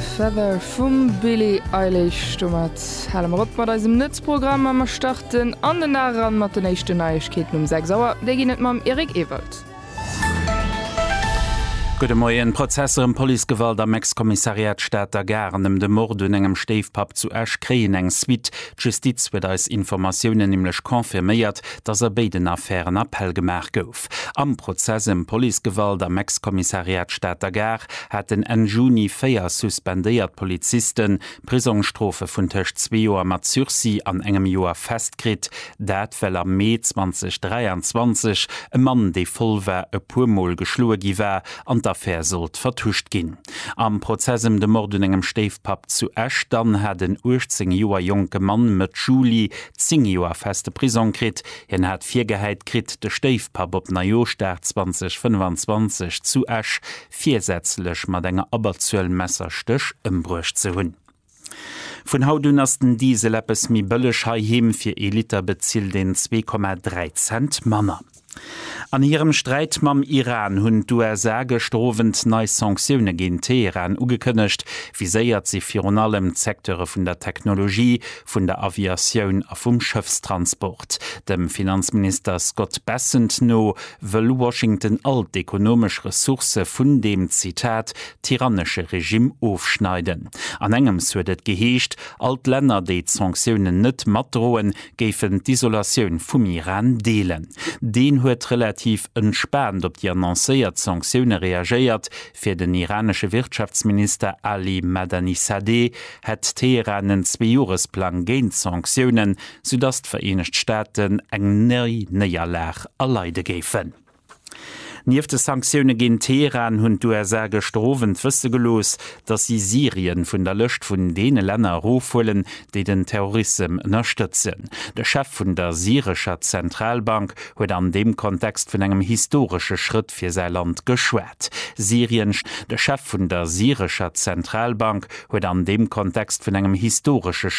Feather vum Billie Eilish. Domat hale mer op mat eisem Nuetsprogramm a mer starten an den Dag eran mat den éischten Neiegkeeten um 6 Auer. Déi ginn et mam Eric Ewald. Gudde Moien. Prozesser ëm Policegewalt am Ex-Kommissariat Stater Gare an ëm de Mord un engem Stéifpapp zu Esch kréien eng Suite. D'Justiz huet eis Informatiounen nämlech confirméiert, datt a béiden Affären Appell gemaach gouf. Haff. Am Prozess ëm Policegewalt am Ex-Kommissariat Stater Gare haten Enn Juni véier suspendéiert Poliziste Prisongsstrofe vun tëscht zwee Joer mat Sursis an engem Joer fest kritt. Dat, well am Mee 2023 e Mann, dee voll war, e puer Mol geschloe gi war an d'Affär sollt vertuscht ginn. Am Prozess ëm de Mord un engem Stéifpapp zu Esch dann hat en 18 Joer jonke Mann Mëtt Juli 10 Joer feste Prisong kritt, Hien hat virgehäit kritt, de Stéifpapp op Neijoschdag 2025 zu Esch virsätzlech mat enger Abberzuel Messerstéch ëmbruecht ze hunn. Vun haut un ass den Diesel eppes méi bëlleg heiheem, fir ee Liter bezilt een zwee Komma dräi Cent manner. An hirem Sträit mam Iran hunn d'USA gëschter Owend nei Sanktioune géint Teheran ugekënnegt. Viséiert si virun allem d'Secteure vun der Technologie, vun der Aviatioun a vum Schëffstransport. Dem Finanzminister Scott Bessent no wëll Washington all d'ekonomesch Ressourcë vun deem, Zitat, tyrannesche Regimm ofschneiden. An engems huet et geheescht, all d'Länner, déi d'Sanktiounen net matdroen, géifen d'Isolatioun vum Iran deelen. Deen huet relativ entspaant op déi annoncéiert Sanktioune reagéiert, Fir den iranesche Wirtschaftsminister Ali Madanisadeh hätt Teheran en Zweejoeresplang géint d'Sanktiounen, soudass d'Vereenegt Staaten eng nei Néierlag erleide géifen. Nieft de Sanktioune géint Teheran hunn d'USA gëschter Owend wësse gelooss, datt si Syrien vun der Lëscht vun deene Länner erofhuelen, déi den Terrorissem ënnerstëtzen. De Chef vun der syrescher Zentralbank huet an deem Kontext vun engem historesche Schrëtt fir säi Land geschwat. Syrien. De Chef vun der syrescher Zentralbank huet an deem Kontext vun engem historesche Schrëtt.